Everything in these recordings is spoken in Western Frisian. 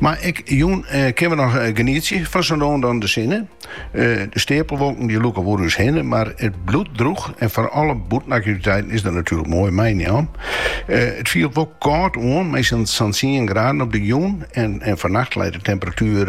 Mar ek jûn kinne we noch genietsje fan sa no en dan de sinne. De steapelwolken dy lûke oer ús hinne, mar it bliuwt drûch en foar alle bûtenaktiviteiten is dat natuerlik moai meienam. It fielt wol kâld oan, mei sa'n tsien graden op de jûn en fannacht leit de temperatuer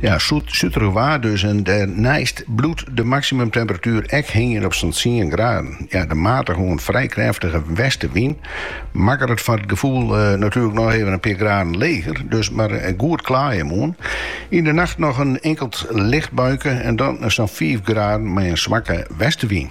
Ja, suterich waar dus en dêrneist bliuwt de maximumtemperatuur ek hingjen op sa'n 10 graden. Ja, de matige oant frij krêftige westewyn makket it foar it gefoel uh, eh, natuurlijk noch even in pear graden leger, dus mar eh, goed klaaie moarn. Yn de nacht noch in inkeld licht buike en dan sa'n 5 graden mei in swakke westewyn.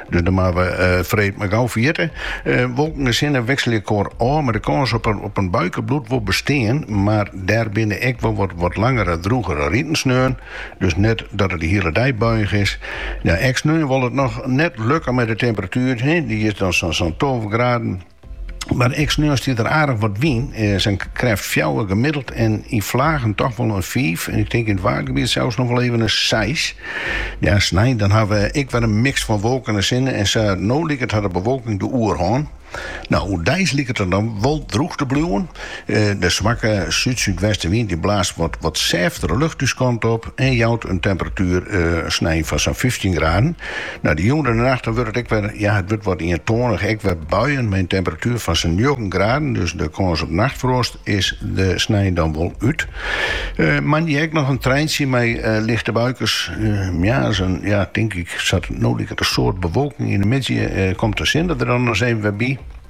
Dus dan moatte we freed mar gau ferjitte. Wolken en sinne wikselje elkoar ôf, mar de kâns op in buike bliuwt wol bestean. Mar dêr binne ek wol wat langere, drûgere riten sneon, dus net dat it de hiele dei buiich is. Ek sneon wol it noch net lukke mei de temperatuer, dy is dan sa'n tolve graden. Mar ek sneon stiet der aardich wat wyn. Sa'n krêft fjouwer gemiddeld en yn flagen toch wol in fiif en ik tink yn it waadgebiet sels noch wol even in seis. Ja, snein dan hawwe we ek wer in miks fan wolken en sinne en sa. No liket har de bewolking de oerhân. No, oerdeis liket it dan wol drûch te bliuwen. De swakke súd-súdwestenwyn dy't blaast wat sêftere lucht ús kant op en jout in temperatuer snein fan sa'n fyftjin graden. Nei de jûn en de nacht dan wurdt it ek wer, ja, it wurdt wat ientoanich, ek wer buien mei in temperatuer fan sa'n njoggen graden, dus de kâns op nachtfroast is der snein dan wol út. Moandei ek noch in treintsje mei lichte buikes, ja, sa'n, ja, tink ik, sa't it no liket in soad bewolking yn de middei, komt de sinne der dan ris even wer by.